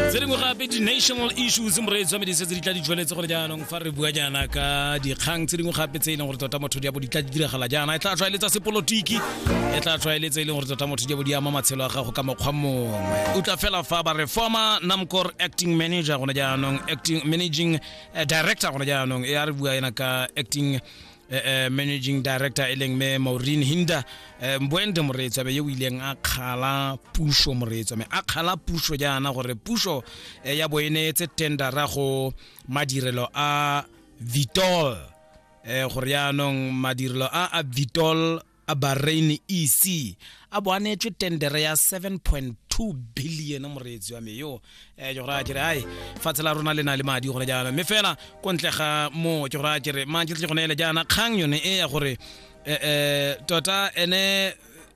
tse dingwe gape di-national issues moreetsi wa medise tse di tla di jweletse gore jaanong fa re bua jaana ka dikgang tse dingwe gape tse e leng gore tota motho diabo di tla di diragala jaana e tla tlwaeletsa sepolotiki e tla tlwaeletsa e leng gore tota motho diabo di ama matshelo a gago ka mokgwa mongwe o tla fela fa ba re former namcor acting manager gone jaanong acting managing eh, director gone jaanong e a re bua ena ka acting eh, eh, managing director e leng me maureen hinda eh, mboende moreetswabe yo o ileng a kgala puso moreetswame a kgala puso jaana gore puso eh, ya bo e neetse tendera go madirelo a vitol eh, gore yaanong madirelo a a vitol a bahrain ec a bo a neetswe tendere ya 7.2 billion moreetsi wa me yo um ke gore a kere ai fatshe la rona le na le madi gone jaana mme fela ko ntle ga moo ke gore a kere mantse tle gone ele jaana kgang yone e ya gore um tota ene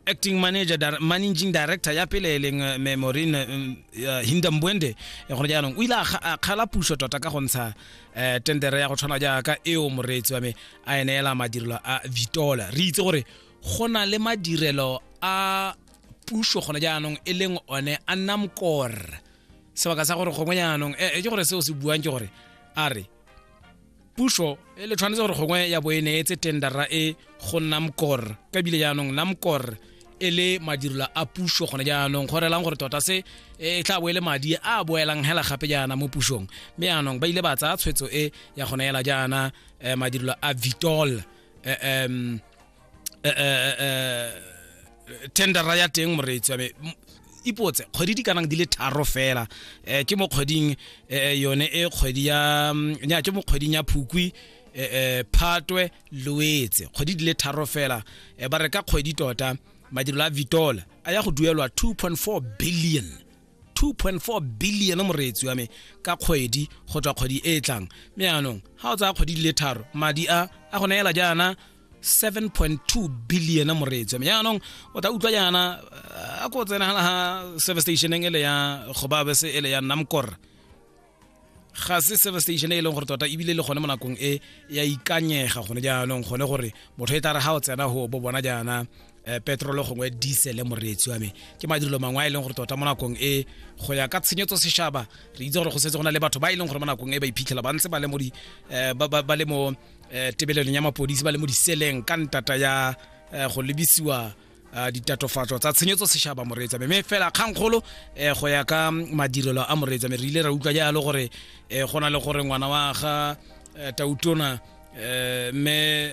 acting manager dir managing director ya pele e leng eh, me morine um, uh, hindambwende eh, gone jaanong o ile a kga- a kgala puso tota ka go ntsha eh tendere ya go tshwana jaaka eo moreetsi wa me a e neela madirelo a vitola re itse gore go na le madirelo a puso gone jaanong e leng one a nna mokor sebaka sa gore gongwe jaanong e ke gore seo se buang ke gore a re puso e le tshwanetse gore gongwe ya bo e neetse tendera e go namcor ka bile jaanong namcor e le madirelo a puso gone jaanong go relang gore tota se e tla bo e le madi a boelang hela gape jaana mo pusong mme jaanong ba ile ba tsaya tshwetso e ya gone hela jaana eh, madirelo a vitol eh, em, eh, eh, eh, tendera ya teng moreetsi wa me M- ipotse kgwedi di kanang di le tharo fela eh, ke mo kgweding eh, yone e kgwedi ya mm, nya, ke mo kgweding ya phukwi eh, eh, phatwe loetse kgwedi di le tharo fela e ba re ka kgwedi tota madirelo a vitola a ya go duelwa 2.4 billion 2.4 billion moreetsi wa me ka kgwedi go tswa kgwedi e e tlang mme yaanong ga o tsaya kgwedi di le tharo madi a a go neela jaana 7.2 billion moreetsi wa me yaanong o tla utlwa jaana a ko tsena ga service stationeng e le ya gobabe se e le ya namkor ga se service station e leng gore tota ebile le gone mo nakong e ya ikanyega gone jaanong gone gore motho e tla re ga o tsena go bo bona jaana eh, petrolo gongwe diesele moreetsi wa me ke madirelo mangwe a e leng gore tota mo nakong e go ya ka tshenyetso sešaba re itse gore go setse go na le batho ba e leng gore mo nakong e ba iphitlhela ba ntse ba le mo eh, ba le mo eh, tebelelong ya mapodisi ba le mo diseleng ka ntata ya go lebisiwa Ah, ditatofatso tsa tshenyetso sešaba moreetsa me me fela kgangkgolo um go ya ka madirelo a moreetsa me re ile ra utlwa jalo gore um go na le gore ngwana wa ga eh, tautona um mme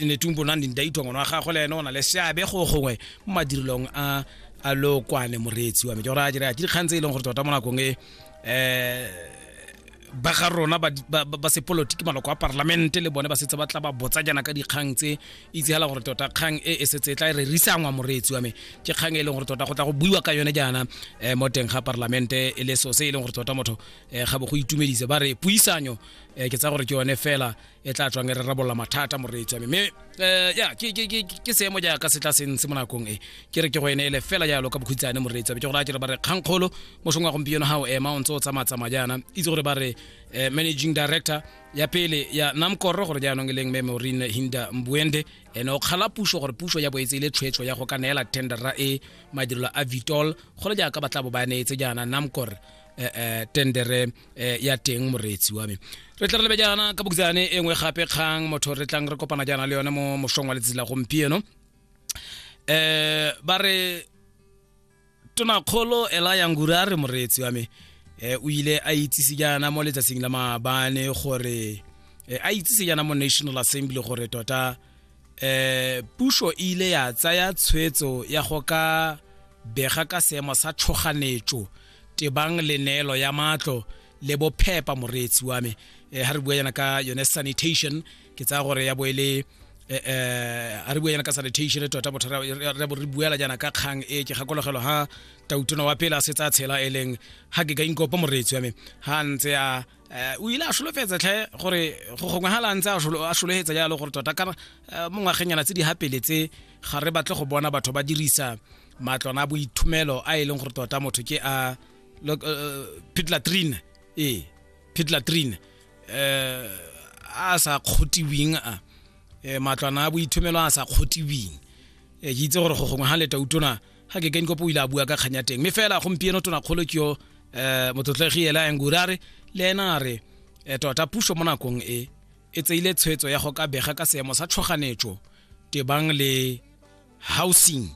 netumbo na neng daitwa ngwana wa gagwe le ene o na le seabe go gongwe mo madirelong a a lokwane moreetsi wa me ke gore a jere a ke dikgang tse e leng gore tota mo nakong e um ba ga rona ba, ba, ba, ba sepolotiki maloko a parlamente le bone ba setse ba tla ba botsa jaana ka dikgang tse itsegala gore tota kgang e e setse e tla e re risangwa moreetsi wa me ke kgang e leng gore tota go tla go buiwa ka yone jaana um mo teng ga parlamente e le so se e leng gore tota motho um ga bo go itumedise ba re puisanyo um ke tsa gore ke yone fela e tla tswang e re rabolla mathata moreetsi wa me mme um ya ke seemo jaaka se tla seng se mo nakong e ke re ke go ene ele fela jalo ka bokhutsane moreetsi wa me ke gore a kere ba re kgankgolo mosong wa gompieno ga o ema o ntse o tsamatsamaya jaana itse gore ba re um managing director ya pele ya namkoro gore jaanong e leng mme maureen hinda mbuende ene o kgala puso gore puso ya boetse ile tshwetso ya go ka neela tendera e madirelo a vitol gole jaaka ba tla bo ba neetse jaana namkor eh, eh, tendere eh, ya teng moreetsi wa me re tla re lebe jaana ka bokitsane e nngwe gape kgang motho re tlang re kopana jaana le yone mo mosong wa letsatsi la gompieno eh ba re tonakgolo ela yangure a re moreetsi wa me eh o ile a itsise jaana mo letsatsing la maabane gore eh, a itsise jaana mo national assembly gore tota eh puso e ile ya tsaya tshwetso ya go ka bega ka seemo sa tshoganetso tebang le neelo ya matlo le bophepa moreetsi wa me eh, ha re bua yana ka yone sanitation ke tsaya gore ya boele eh, eh, ha re bua yana ka sanitation tota bothata re bo re buela jana ka kgang e ke gakologelo ha tautona wa pele a se tsa tshela e leng ha ke ka inkopa moreetsi wa me ha ntse a eh, o ile a solofetsa tlhe gore go gongwe ga la ntse a sholo- a sologetsa jalo gore tota ka eh, mo ngwageng yana tse di gapeletse ga re batle go bona batho ba dirisa matlwana a boithumelo a e leng gore tota motho ke a uh, uh, pitlatrine ee pitlatrine eh a sa kgotiwing a eh, matlwana a boithumelo a sa kgotiwing eh, ke itse gore go gongwe ga leta utona ga ke kenkopo o ile a bua ka kganya teng mme fela gompieno tona kgolo ke yo eh, motlotlegi ela engura re le ena a re eh, tota puso mo nakong e e tseile tshwetso ya go ka bega ka seemo sa tshwoganetso tebang le housing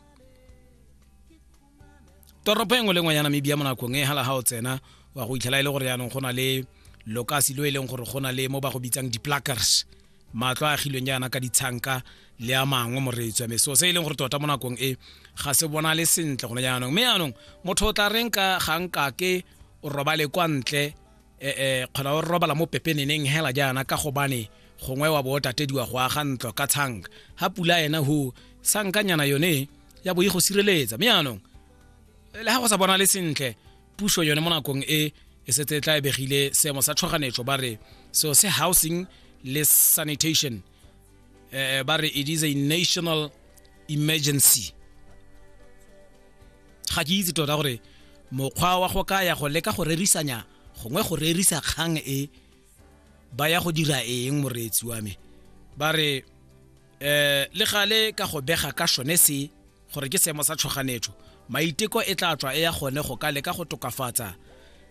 toropo engwe le ngwe ya namibia mo nakong e hala ga o tsena wa go itlhela e le gore yaanong go na le lokasi lo e leng gore go na le mo ba go bitsang di-plackers matlo a agilweng jaana ka ditshanka le a mangwe moretswa me so se e leng gore tota mo nakong e ga se bona le sentle gone jaanong mme jaanong motho o tla reng ka ga nkake o robale kwa ntle e, e, kgona o robala mo pepeneneng hela jaana ka gobane gongwe wa bootatediwa go aga ntlo ka tshang ga pula ena go sankanyana yone ya bo e go sireletsa mme yanong le ga go sa bona le sentle puso yone mo nakong e e setse e tla ebegile seemo sa tshoganyetso ba re seo se housing le sanitation eh, ba re it is a national emergency ga ke itse tota gore mokgwa wa go ka ya go leka go rerisanya gongwe go rerisa kgang e ba ya go dira eng moreetsi wa me ba re eh le gale ka go bega ka sone se gore ke seemo sa tshoganetso maiteko e tla tswa e ya gone go ka leka go tokafatsa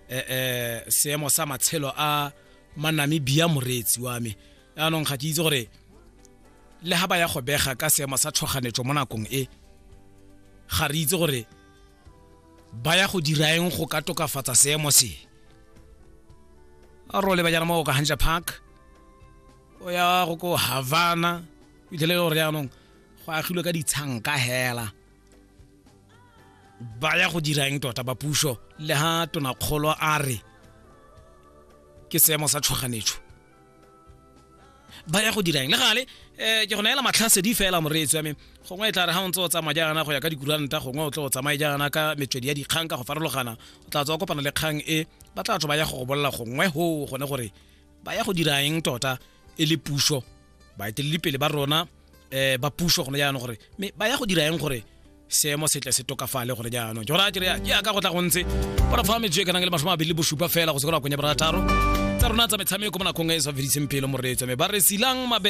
eh eh seemo sa matshelo a manamibia moreetsi wa me yaanong ga ke itse gore le ga ba ya go bega ka seemo sa tshoganyetso mo nakong e ga re itse gore ba ya go dira eng go ka tokafatsa seemo se a role ba jana mo ka hanja park o ya go ko havana fitlhele e gore yaanong go agilwe ka ditshanka hela ba ya go dira eng tota ba puso le ha tonakgolo a re ke seemo sa tshoganyetso ba ya go dirang le gale um ke go naela matlhasedi fela moreetsi wa me gongwe e tla re ga o ntse o tsamaya jaana go ya ka dikuranta gongwe o tlo o tsamaye jaana ka metswedi ya dikgang ka go farologana o tla tswa kopana le kgang e ba tla tswa ba ya go go bolela gongwe go gone gore ba ya go dira eng tota e le puso baeteledipele ba rona eh ba puso gone jaanong gore me ba ya go dira eng gore seemo setle se tokafale gore jaanong jora jere ya ka go tla go ntse ba fa metswe e kana le masho mabedi le bosupa fela go se go konya barataro tsa rona tsa metshameko mo nakong e sa fediseng pelo moreetso me ba re silang mabe